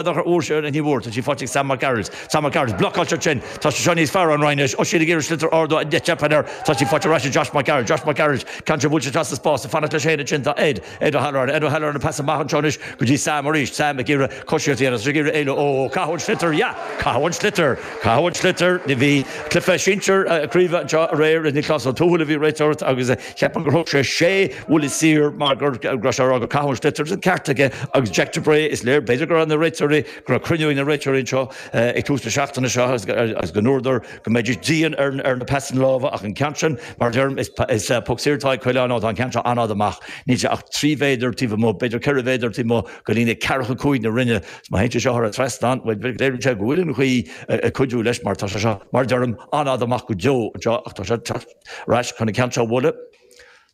An Dothra Mhór Sharon Ní Mhór Tá sí faighte ag Sam Mac Gearailt Sam Mac Gearailt, Blocáilte ansin, Tá sé seo níos fearr, An Rinn anois, Oisín ag iarraidh sliotar a ardú teipeann air, Tá sí faighte ar ais ag Josh Mac Gearailt Josh Mac Gearailt, Ceann sé bhuail sé trasna spás, ag fanacht leis féin ansin tá Ed, Ed Ó hAlluráin Ed Ó hAlluráin, An pas an-mhaith anseo anois go dtí Sam arís Sam ag iarraidh coisíocht a dhéanamh, ag iarraidh éalú, Ó, ó, caitheadh an sliotar Ya! Caitheadh an sliotar Caitheadh an sliotar Ní Bhí cluiche sinsir craoibhe anseo aréir Nioclás Ó Tuathail a bhí ag réiteoireacht agus. Ceapaim gur thug sé sé bhuille saor mar go raibh sé ag rá gur caitheadh an sliotar ceart aige agus Jack de Brae, is léir, b'fhéidir go raibh na réiteoirí, go raibh cruinniú ag na réiteoirí anseo ag tús na seachtaine seo agus go ndúradar go mbeidís dian ar na pasanna láimhe ach an ceann sin, mar a deirim, is poc saor atá ag Coileáin ó tá an ceann seo an-fhada amach, níl sé ach trí mhéadar taobh amuigh, b'fhéidir ceithre mhéadar taobh amuigh de líne ceathracha cúig na Rinne. Má théann sé seo thar an trasnán, bhuel, léiríonn sé go bhfuil an ghaoth ag cuidiú leis mar tá sé seo, mar a deirim, an-fhada amach go deo anseo ach tá sé ag teacht. Ar ais chun an ceann seo a bhualadh.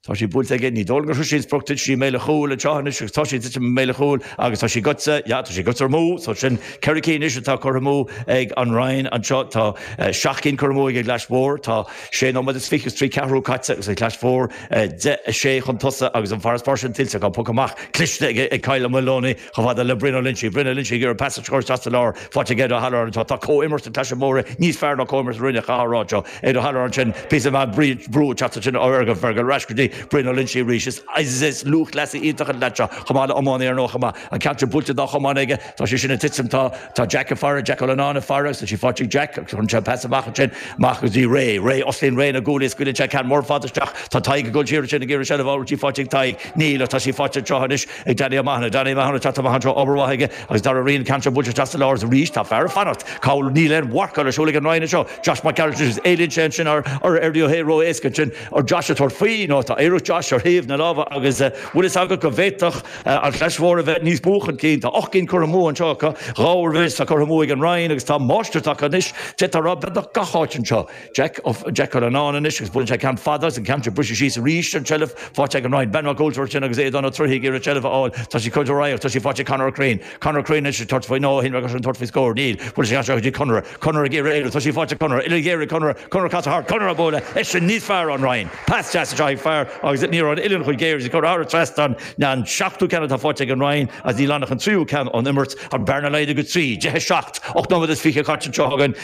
Tá sí buailte aige. Ní dóigh liom gur thug sí an sprioc duit. Sí i mbéal an chúil anseo anois agus tá sí ag titim i mbéal an chúil agus tá sí gaibhte. Yeah, tá sí gaibhte amú. So sin ceithre cinn anois atá curtha amú ag An Rinn anseo. Tá seacht gcinn curtha amú ag an gClais Mhór. Tá sé nóiméad is fiche is trí ceathrú caite agus An Chlais Mhór deich a sé chun tosaigh agus an farasbarr sin tuillte acu. Poc amach cliste ag Kyle Moloney. Chomh fada le Brian Ó Loinsigh, Brian Ó Loinsigh, ag iarraidh pas a chur isteach sa lár faighte ag Ed Ó hAlluráin anseo, tá comhimirt na Claise Móire níos fearr ná comhimirt na Rinne caithfear a rá anseo Ed Ó hAlluráin sin píosa maith brú ag teacht ansin ó Fhergal, Fergal ar ais go dtí Brian Ó Loinsigh arís is is lúthchleasaí iontach an leaid seo chomh maith le iománaí ar ndóigh chomh maith, an ceann sin buailte dá chumann aige, tá sé sin ag titim tá tá Jack ag faire, Jack Ó Lonáin ag faire agus tá sí faighte ag Jack agus cuireann sé an pas amach ansin amach go dtí Ray, Ray osclaíonn Ray na guaillí is scaoileann sé ceann mór fada isteach tá Tadhg ag dul siar ansin ag iarraidh seilbh a fháil bhfuil sí faighte ag Tadhg, níl ach tá sí faighte anseo anois. ag Danny O'Mahony. Danny O'Mahony, tá tamall anseo obair mhaith aige agus Darragh Ryan, ceann buailte isteach sa lár arís. Tá fear ag fanacht. Cathal, níl aon mharcáil ar siúl ag an Rinn anseo. Josh Mac Gearailt, anois éalaíonn sé ansin ar Darragh ró éasca ansin ar Josh ag tabhairt faoi ó tá iarracht Josh ar thaobh na láimhe agus bhfuil fhios agat go bhféadfadh an Chlais Mhór a bheith níos mó chun cinn. Tá ocht gcinn curtha amú anseo acu. Dhá oiread is atá curtha amú ag an Rinn agus tá máistreacht acu anois. D'fhéadfá a rá beagnach gach áit anseo. Jack curtha anonn anois agus buaileann sé ceann fada agus an ceann sin briseadh síos arís ar an tseilbh. Faighte ag an Rinn. Ben Mac Ualteraird sin agus Aodán Ó Troighthe ag iarraidh an tseilbh a fháil. Tá sí curtha de radharc. Tá sí faighte ag Conor Ó Cuirrín. Conor Ó Cuirrín anois ag tabhairt faoi. No, shíl mé gur sin tabhairt faoi scór. Níl. Buaileann sé isteach go dtí Conor. Conor ag iarraidh éalú. Tá sí faighte ag Conor. Uillinn ghéar ag Conor. Conor ag casadh thart. Conor á bualadh. Sé sin níos fearr ón Rinn. Pas deas anseo ag Fergal agus ní raibh an uillinn chomh géar. Sí curtha thar an trasnán an seachtú ceann atá faighte ag an Rinn agus níl ann ach an tríú ceann ón imirt. Tá an bearna laghdaithe go trí. Deich a seacht. Ocht nóiméad is fiche caite anseo againn.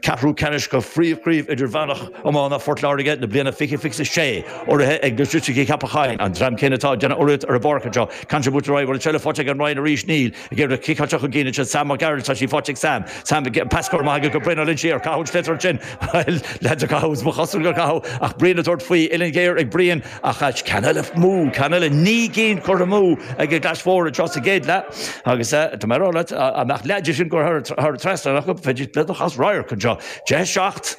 Ceathrú ceannais de Phríomhchraobh Idirmheánach Iomána Phort Láirge na bliana fiche fiche sé, urraithe ag Logistics Cheapach Choinn, an dream céanna atá ag déanamh urraíocht ar an bpáirc anseo. Contributor I, An bhfuil seilbh faighte ag an Rinn arís Níl ag éirí leo ciceáilte chun cinn ansin Sam Mac Gearailt, tá sí faighte ag Sam. Sam, Pas gearr maith aige go Brian Ó Loinsigh ar caitheadh an sliotar ansin. Bhuel, leaids a caitheadh, is ba chosúil gur caitheadh ach Brian ag tabhairt faoi, uillinn ghéar ag Brian, Ach ait ceann eile mó, ceann eile naoi gcinn curtha amú ag an gclais mhór anseo sa gcéad leath agus tá mé ag rá leat an mbeadh leath de sin curtha thar thar an trasnán acu bheadh bheadh an cás réidh anseo. Fiche seacht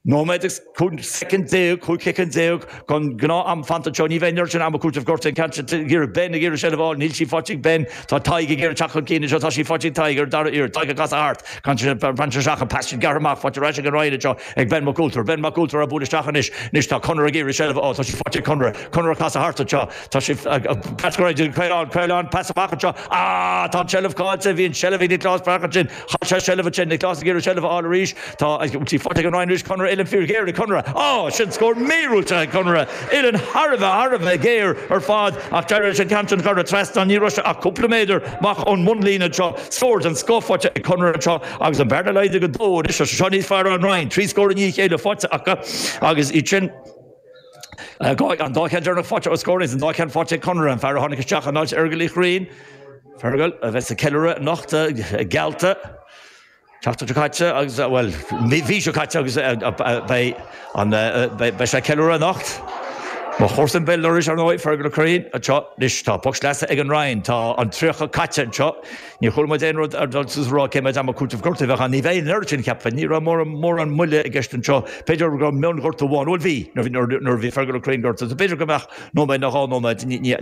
nóiméad agus cúig shoicind déag, cúig shoicind déag den ghnáth-am fanta anseo. Ní bheidh an oiread sin ama cúitimh gortaithe i gceist ag iarraidh Ben ag iarraidh seilbh a fháil. Níl sí faighte ag Ben. Tá Tadhg ag iarraidh teacht chun cinn anseo. Tá sí faighte ag Tadhg ar an dara iarraidh. Tadhg ag casadh thart. Caint ar an seacht, an seacht, an seacht, an pas sin gearrtha amach. Faighte ar ais ag an Rinn anseo. Ag Ben Mac Ultair. Ben Mac Ultair á bualadh isteach anois. Anois tá Conor ag iarraidh seilbh a fháil. Tá sí faighte ag Conor. Conor ag casadh thart anseo. Tá sí ag casadh go dtí Caolán. Caolán, pas amach anseo. Ah! Tá an seilbh caillte. Bhí an seilbh ag Nioclás Breathnach ansin. Chaill sé seilbh ansin. Nioclás ag iarraidh seilbh a fháil arís. Tá sí faighte ag an Rinn arís. Conor uilleann fir ghéar ag Conor. Ah! Sin scór míorúilteach ag Conor. Uilleann thar a bheith, thar a bheith géar ar fad ach d'éirigh leis an ceann sin a chur thar trasnán. Ní raibh sé ach cúpla méadar amach ón mbunlíne anseo. Scór den scoth faighte ag Conor anseo. Agus an bhearna laghdaithe go dó anois, tá sé seo níos fearr ón Rinn. Trí scór i ndiaidh a chéile faighte acu agus iad sin, an dá cheann deireanach faighte ó scór aon, an dá cheann faighte ag Conor, an fear a tháinig isteach in áit Fhergal Uí Ghriann. Fergal a bheidh ag ceiliúradh anocht, geallta, seachtain seo caite agus, bhuel, mhí seo caite agus beidh sé ag ceiliúradh anocht. Mo chomharsa Bill Lurish, ar ndóigh, Fergal Ó Curraoin anseo. Anois, tá poc sleasa ag an Rinn. Tá an 30 caite anseo. Níor chuala muid aon rud ar ndóigh ag rá cé mhéad ama cúitimh gortaithe a bheadh ann. Ní bheidh an oiread sin, cheapfainn. Ní raibh mórán moille i gceist anseo. B'fhéidir go raibh mionghortú amháin, bhuel bhí, nuair a bhí Fergal Ó Cuinn gortaithe. B'fhéidir go mbeadh nóiméad nó dhá nóiméad, ní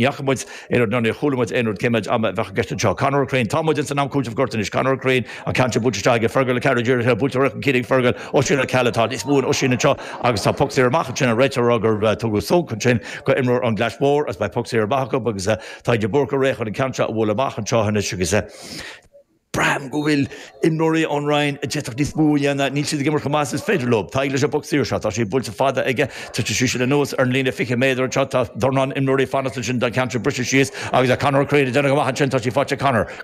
fhaca muid aon rud ná níor chuala muid aon rud cé mhéad ama a bheadh i gceist anseo. Conor Ó Cuinn, Tá muid ins an am cúitimh gortaithe anois. Conor Ó Cuinn, An ceann sin buailte isteach aige Fergal, a ceathrú dírithe, buailte ar aghaidh chun cinn ag Fergal. Oisín Ó Ceallaigh, Tá níos mó in Oisín anseo agus tá poc saor amach ansin. An réiteoir, a rá gur tugadh sonc ansin go imreoir ón gClais Mhór agus beidh poc saor amach acu agus, Tadhg De Búrca réidh chun an ceann seo a bhualadh amach anseo anois agus braithim go bhfuil imreoirí ón Rinn a d'fhéadfadh níos mó a dhéanamh. Níl siad ag imirt chomh maith is is féidir leo. Tadhg leis an bpoc saor seo. Tá sí buailte fada aige. Titfidh sí sin anuas ar an líne 20 méadar anseo. Tá dornán imreoirí ag fanacht ansin don cheann sin briseadh síos agus Conor Crean ag déanamh go maith ansin. Tá sí faighte ag Conor.